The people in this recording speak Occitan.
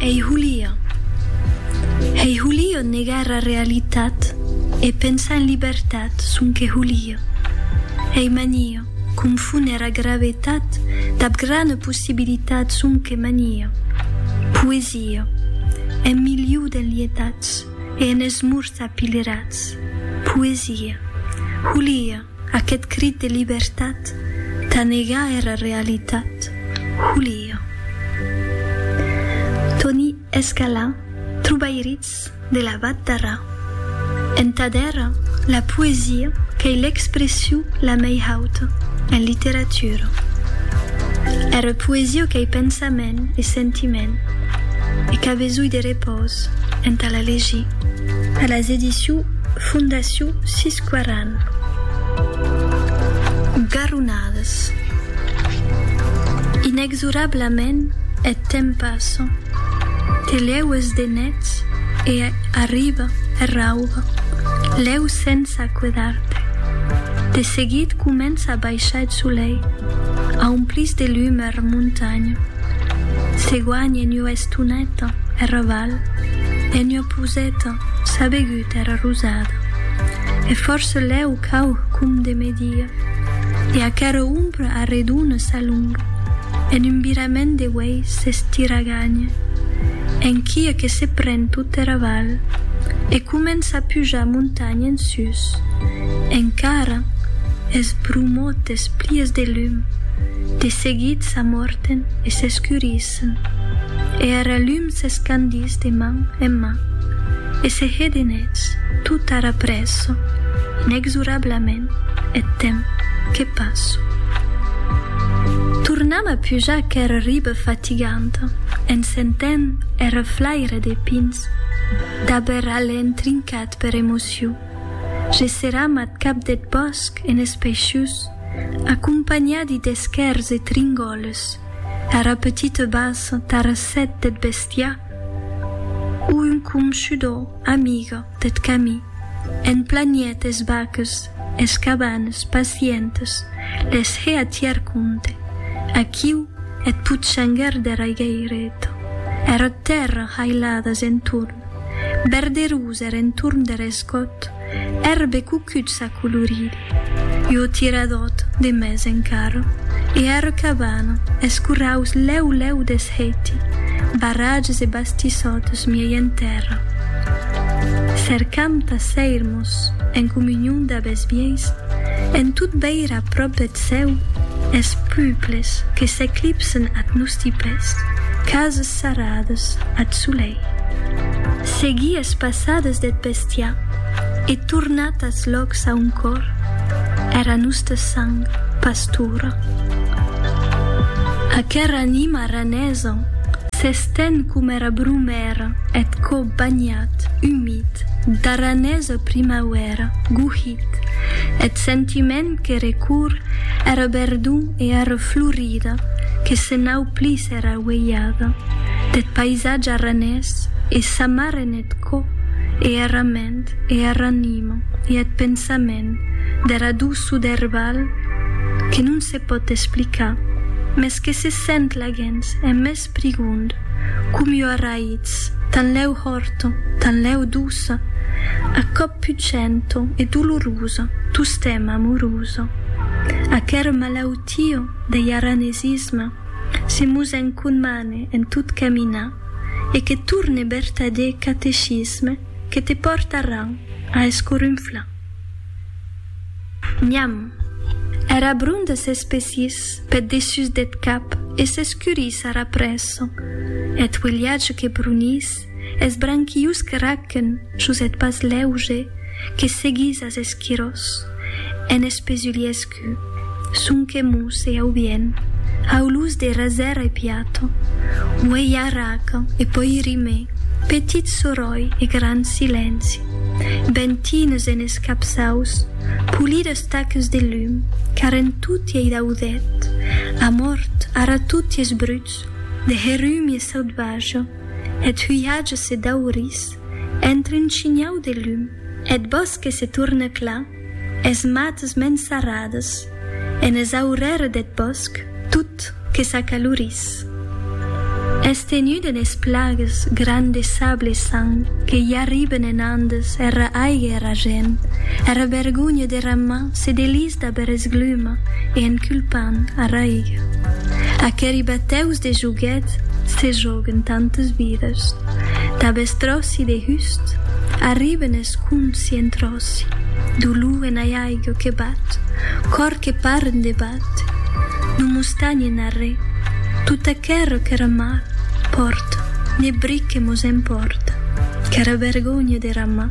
Ei Julia. Ei Julia negar era realitat e pensar en libertat sonque Julia. Ei mania confóner era gravetat dab grana possibilitat sonque mania. Poesia. En miliu d'enlietats e en esmorts apilerats. Poesia. Julia. Aquest crit de libertat tà negar era realitat, Julio. Toni Escalà, Trobairitz de la Vat d'Arrà. Entà d'era, la poesia qu'ei l'expression la mei hauta en literatura. Era poesia qu'ei pensament e sentiment e qu'a besonh de repòs entà la legir. A las edicions Fondacion 6 Quaran. Garronades. Inexorablament eth temps passa. Te lhèu es de nets e arriba er rauba. Lhèu sense acuedar-te. De seguit comença a baishar eth solei. Aumplís de lum era montanha. Se guanhen ua estoneta era val en ua poseta, sabegut. Tèrra rosada. E fòrça lèu cau com de media. E aquera ombra arredona s'alonga en un virament de uèi s'estiraganha enquia que se pren tot era val e comença a pujar montanha en sus. Encara es bromotes plies de lum, de seguit s'amòrten e s'escurissen. Esse. E ara lum s'escandís de man en man, e se hè de nets, tot ara presso, inexorablament, eth temps que passo. Tornam a pujar aquera riba fatiganta, en sentent er reflaire des pins, dab er alen trincat per emocion, gesseram ath cap deth bòsc enes peixús, acompanhadi d'esquèrs e tringoles, Era petite bas tara sèt deth bestiar o un conshudor amigue deth camí, en planiet es vaques, es cabanes pacientes, les hè a tier compte, aquiu eth putxanguèr dera higueireta, era tèrra hailades entorn, verderous er entorn der escòt, Èrbe cucut s'a colorit, ua tiradòt de mès encara, e era cabana, es corraus lèu lèu desheiti, barratges e bastissòtes miei en tèrra. Cercam tà séir-mos en comunion dab es vièis, en tot veir a pròp eth cèu es puples que s'eclipsen ath nòsti pès, cases sarrades ath solei. Seguir es passades deth pessèr. Bèstia, e tornat as lòcs a on còr era nosta sang pastora. Aquera anima ranesa s'estén com era bromèra eth còp banhat, umit, d'aranesa primauèra, gohit, eth sentiment que recorr era verdor e era florida que se nau plís era uelhada deth paisatge aranés e s'amarren Eth cò, e era ment, e era anima, e eth pensament, dera doçor der balh, que non se pòt explicar, mès que se sent laguens en mès prigond, com ua raïtz, tanlèu hòrta, tanlèu doça, a còp pucenta e dolorosa, tostemp amorosa. Aquera malautia dei aranesisme. Se mos enconmane en tot caminar e que torne bertadèr catecisme que te pòrta ran a escorunflar. Nham! Era bronda s'espessís peth dessús deth cap e s'escurís ara presso. Eth uelhatge que brunís Es branquius que raquèn sus eth pas lèuge que seguís as esquirós, en espesuliescu, sonque mos e aubien, au luz de rasèra e piato, uei arraca e poi rime, petit soròi e gran silenci, bentines en es capçaus, polides taques de lum, car en toti ei daudet, amòrt ara toti es bruts de herumi e sauvaja. Eth huiatge se daurís entre un shinhau de lum, eth bòsque se torne clar, es mates mens sarrades, enes aurères deth bòsc tot que s'acalorís. Es tenut enes plagues gran de sable e sang que i arriben en Andes era aiga e era gent, era vergonha dera man, Se delís d'aver esgluma e en culpant a raiga. Aqueri batèus de joguet se joguen tantes vidas. Dab es tròci de hust arriben es conci en tròci. Dolor en aiaiga que bat, còr que paren de bate. Non mostanhen arré. Tot aquero qu'era mal, pòrta, ne bric que mos empòrta. Qu'era vergonha de ramar.